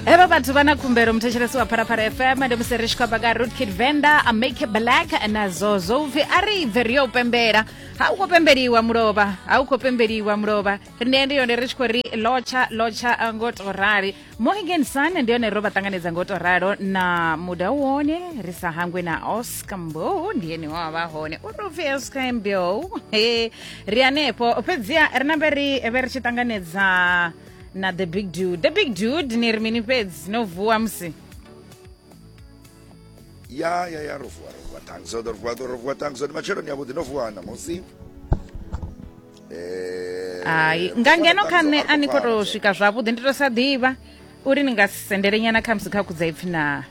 hevha vhathu vha na khumbelo muthetshelesi wa pharapara fm ndi musi ri tshi khou amba nga root kid venda amake black na zozo upfi a ri bve ri yo pembela ha u khou pembeliwa mulovha ha u khou pembeliwa mulovha rine ndi yone ri tshi khou ri lotsha lotsha ngo to rali mohigan sun ndi yone ro vha ṱanganedza ngo to ralo na muda wone ri sa hangwe na oscar mbo ndi ene wa vha hone u ri upfi oscar mbo ri hanefho fhedziha ri nambe ri vhe ri tshi ṱanganedza na the big dude the big dude ni ri mini fhedzi no vuwa musi ya ya ya ro vuwa ro vuwa tangi zwoṱhe ro vuwa ro vuwa tangi zwoṱhe matsheloni yavhuḓi no vuwa ṋamusi Eh, hai nga ngeno kha nṋe a ni khou tou swika zwavhuḓi ndi tou sa ḓivha uri ni nga si sendele nyana khamusi kha kudza ipfhi na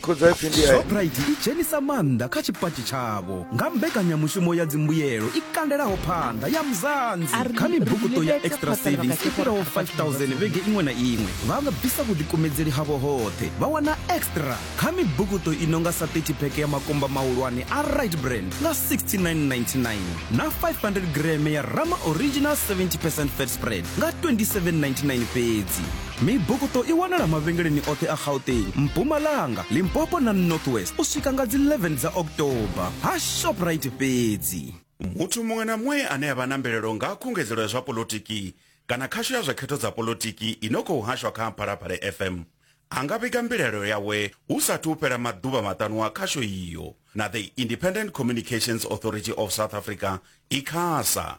Shoprite i dzhenisa maanḓa kha tshipatshi tshavho nga mbekanyamushumo ya dzimbuyelo i kandelaho phanḓa ya Mzansi. Kha mibukuṱo ya Extra Savings i fhiraho 5000 vhege iṅwe na iṅwe, vha nga bvisa vhuḓikumedzeli havho hoṱhe vha wana Extra kha mibukuṱo i no nga sa 30 pheke ya makumba mahulwane a Rite Bran nga 69,99 na 500 greme ya Rama Original 70 percent fat spread nga 27,99 fhedzi. Mibukuṱo i wanala mavhengeleni oṱhe a Gauteng, Mpumalanga, Limpopo na North West u swika nga dzi 11 dza October, ha Shoprite fhedzi. Muthu muṅwe na muṅwe ane a vha na mbilaelo nga ha khungedzelo ya zwa poḽotiki kana khasho ya zwa khetho dza poḽotiki i no khou hashwa kha Phalaphala FM a nga vhiga mbilaelo yawe hu sa athu u fhela maḓuvha maṱanu a khasho iyo na The Independent Communications Authority of South Africa, Icasa.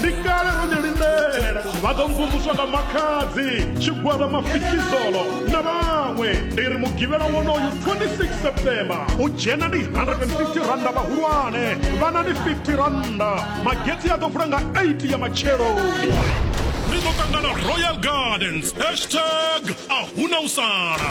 ndi kale ro ni lindela vha ḓo mvumvuswa nga makhadzi tshigwada mafikizolo na vhaṅwe ndi ri mugivhela wonoyu 26 september u dzhena ndi 150 randa vhahulwane vhana ndi 50 randa magetsi a ḓo vula nga 8 ya matsheloni ri ḓo ṱangana royal gardens hashtag a huna u sala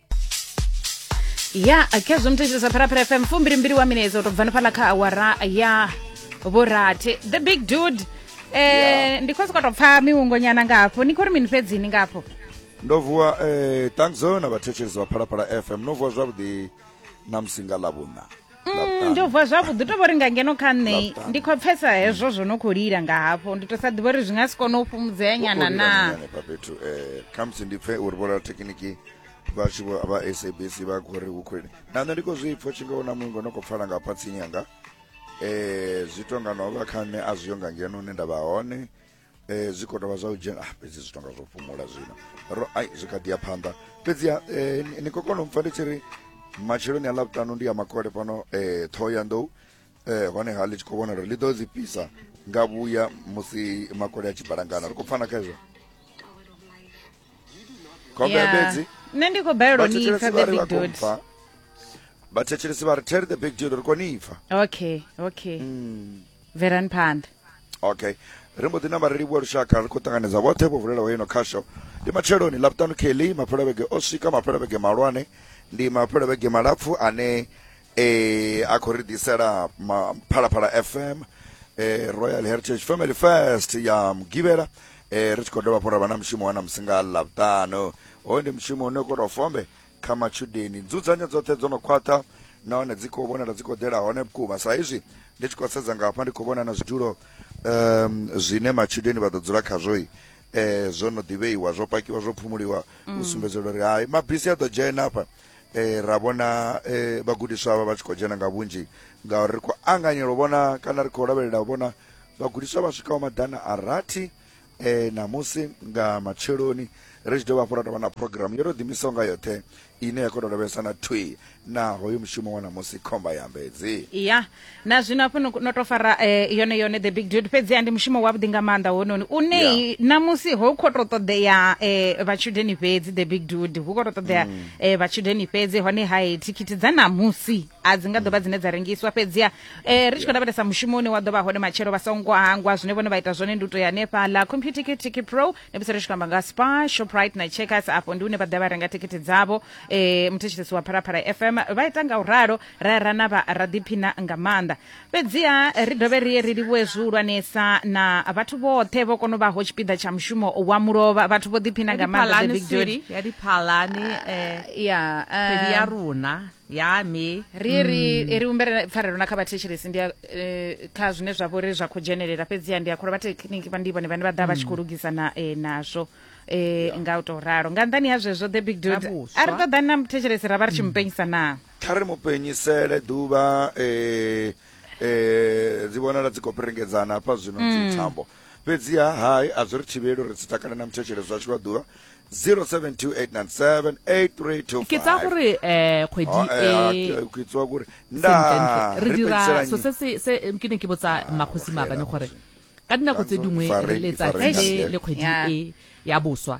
ya khezwo muthetshelesa pharapara fm fumbilimbili wa minetse u to bva nifhala kha awara ya vhurathi the big dude eh ndi khou sokou tou pfa miwungonyana nga hafho ni khou ri mini fhedzini nga hafho ndo vuwa eh thanks na vhathetshelesi vha phalaphala fm no vuwa zwavhuḓi na musi nga ḽa vhuṋa Mm, ndo vuwa zwavhuḓi to vhori nga ngeno kha nṋe ndi khou pfesa hezwo zwo no khou lila nga hafho ndi to sa ḓivha uri zwi nga si kone u fhumudzea nyana na hanefha fhethu um eh, khamusi ndi pfe uri vholaho thekiniki vhatshi vha sabc vha khou ri hu khou na nṋe ndi khou zwi pfo tshinga na mungo no khou pfala nga phatsini yanga um zwi tonga no vha kha nṋe a zwi yo nga ngeno hune nda vha hone eh, zwi khou tovha zwa u dzhena ah, fhedzi zwi tonga zwo fhumula zwino ro ai zwi kha ḓi ya phanḓa fhedziha eh, ni khou kona u mpfa ndi tshi ri matsheloni a ḽavhutanu ndi ya makole fhano eh, ṱhoho ya nḓou eh, honeha ḽi tshi khou vhona uri ḽi ḓo dzi fhisa nga vhuya musi makole a tshi balangana ri khou pfana kha izwo khombe ya fhedzi nṋe ndi khou balelwa ni ipfa the big dude vhathetshelesi vha ri tell the big dude ri kone ipfa okay okay mm. verani phanḓa okay ri mbo ḓi na vhareli vhua lushaka ri khou ṱanganedza vhoṱhe vho vulelaho ino khasho ndi matsheloni laptano kelly maphelavhege o swika maphelavhege malwane ndi maphelavhege malapfu ane eh a khou ri ḓisela phalaphala fm eh royal heritage family first ya mugivhela eh ri tshi khou dovha fhora vha na mushumo wa na musi nga ḽavhuṱanu hoyu ndi mushumo une khou tou fombe kha matshudeni nzudzanyo dzoṱhe dzo no khwaṱha nahone dzi khou vhonala dzi khou ḓela hone vhukuma sa izwi ndi tshi khou sedza nga hafha ndi khou vhona na zwidulo um zwine matshudeni vha ḓo dzula khazwo um eh, zwo no ḓivheiwa zwo pakiwa zwo phumuliwa u mm. sumbedza uri hai mabisi a ḓo dzhena hafha e, ra vhona e, vhagudiswa vha vha tshi khou dzhena nga vhunzhi ngauri ri khou anganyela u vhona kana ri khou lavhelela u vhona vhagudiswa vha swikaho maḓana a rathi e, ṋamusi nga matsheloni ri tshi dovha hafhu ra tovha na programu yo to ḓimisaho nga yoṱhe ine ya kona u lavhelesa na thwi na hoyo mushumo wa ṋamusi khomba ya mbedzi ya na zwino hafho no no to fara eh, yone yone the big dude fhedziha ndi mushumo wavhuḓi nga maanḓa hononi une Yeah. namusi ho khou tou ṱoḓea eh, vhatshudeni fhedzi the big dude hu khou tou ṱoḓea Mm. eh, vhatshudeni fhedzi hone hai thikhithi dza namusi a dzi nga ḓo vha dzine dza rengiswa fhedziha eh, ri tshi khou lavhelesa mushumo une wa ḓo vha hone matshelo vha songo hangwa zwine vhone vha ita zwone ndi u tou ya hanefhaḽa computer kitiki pro ne musi ri tshi khou amba nga spa shoprite na checkers afho ndi une vha ḓa vha renga thikhithi dzavho eh, muthetshelesi wa pharaphala fm vha ita nga u ralo rera na vha ra ḓiphina nga maanḓa fhedziha ri dovhe ri ye ri livhuwe zwihulwanesa na vhathu vhoṱhe vho kona u vhaho tshipiḓa tsha mushumo wa mulovha vhathu vho ḓiphina nga maanḓa the big dude ya diphalani eh, ya kgwedi ya rona ya me ri ye ri ye ri humbele pfarelo na kha vhathetshelesi ndi a- eh, kha zwine zwa vhori zwa khou dzhenelela fhedziha ndi a kholwa vhathekhiniki vha ndi vhone vhane vha ḓa vha tshi khou lugisa na eh, nazwo eh, nga u tou ralo nga nḓani ha zwezwo the big dude Nga vhuswa. a ri ṱoḓani na muthetshelesi ra vha ri tshi mu penyisa naa kha ri mu penyisele ḓuvha eh, eh, dzi vhonala dzi khou perengedzana hafha zwino mm. dzithambo fhedziha hai a zwi ri thivheli uri dzi takale na muthetshele zwashu lwa ḓuvha 0728978325 ke tsa gore eh kgwedi oh, eh, ah, e ke tswa gore nda re dira so se se ke ne ke botsa ah, makgosi mabane gore ka dinako tse dingwe letsatsi le kgwedi e ya boswa